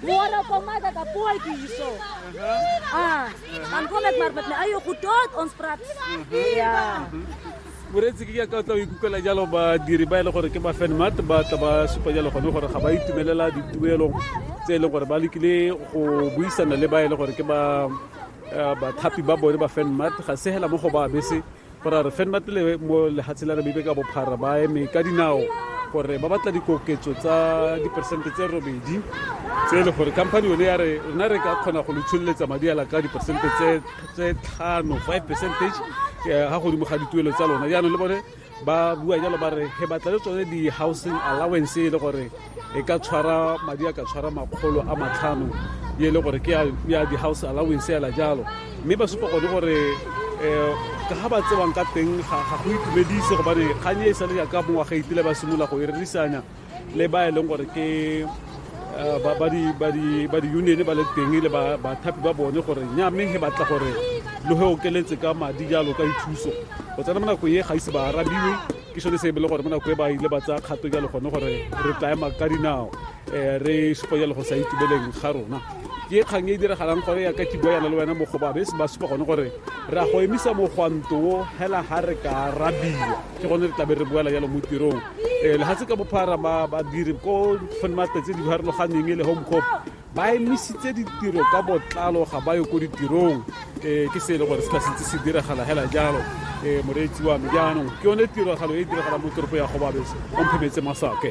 Moore kom maar dat apootjie hierso. Ah, dan kom ek maar met my eie goed tot ons praat. Ja. Moretsi ke ka tla ikukela jalo ba diri ba ile gore ke ba fan mat ba tla ba supa jalo gone gore ga ba itumelela dituelo tse ile gore ba lekile go buisana le ba ile gore ke ba bathapi ba bone ba fan mat ga se hela mo go ba bese gore re fenna pele mo lehatshe la rebibe ka bophara ba eme ka dinao gore ba batla dikoketso tsa diperesente tse robedi tse e le gore company yone ya re rona re ka kgona go le tsholeletsa madi ala ka diperesente tse tlhano five percentage eh, ga godimo ga dituelo tsa lona jaanong le bone ba bua jalo ba re he batla le tsone di-housing allowance e le gore e ka tshwara madi a ka tshwara makgolo a matlhano e le gore ke ya di-house allowance ela jalo mme ba supa gone gore um ka ga ba tsewang ka teng ga go itumedise gobane kgang e e sale jaaka mongwaga itile ba simolola go e rerisanya le ba e leng gore ke eh, ba di-union ba le teng le bathapi ba bone gore nya mme he batla gore lo he okeletse ka madi jalo ka dithuso go tsena mo nakong e ga ise ba arabiwe ke sone se e bele gore mo nako e ba ile ba tsaya kgato jalo gone gore re tla ema ka dinao um re supa jalo go sa itumeleng ga rona ke kgang e e diragalang gore ya ka ke bua yana le wena mogobabe se ba supa gone gore re a go emisa mogwanto o hela ga re ka rabiwa ke gone re tlabe re boela jalo mo tirong um legatse ka bophara badiri ko fenmate tse di farologaneng e le home cop ba emisitse ditiro ka botlalo ga ba yo ko ditirong um ke se e le gore se ka sentse se diragala fela jalo um moreetsi wa me jaanong ke yone tiragalo e e diragalang mo toropo ya gobabese o mphemetse masake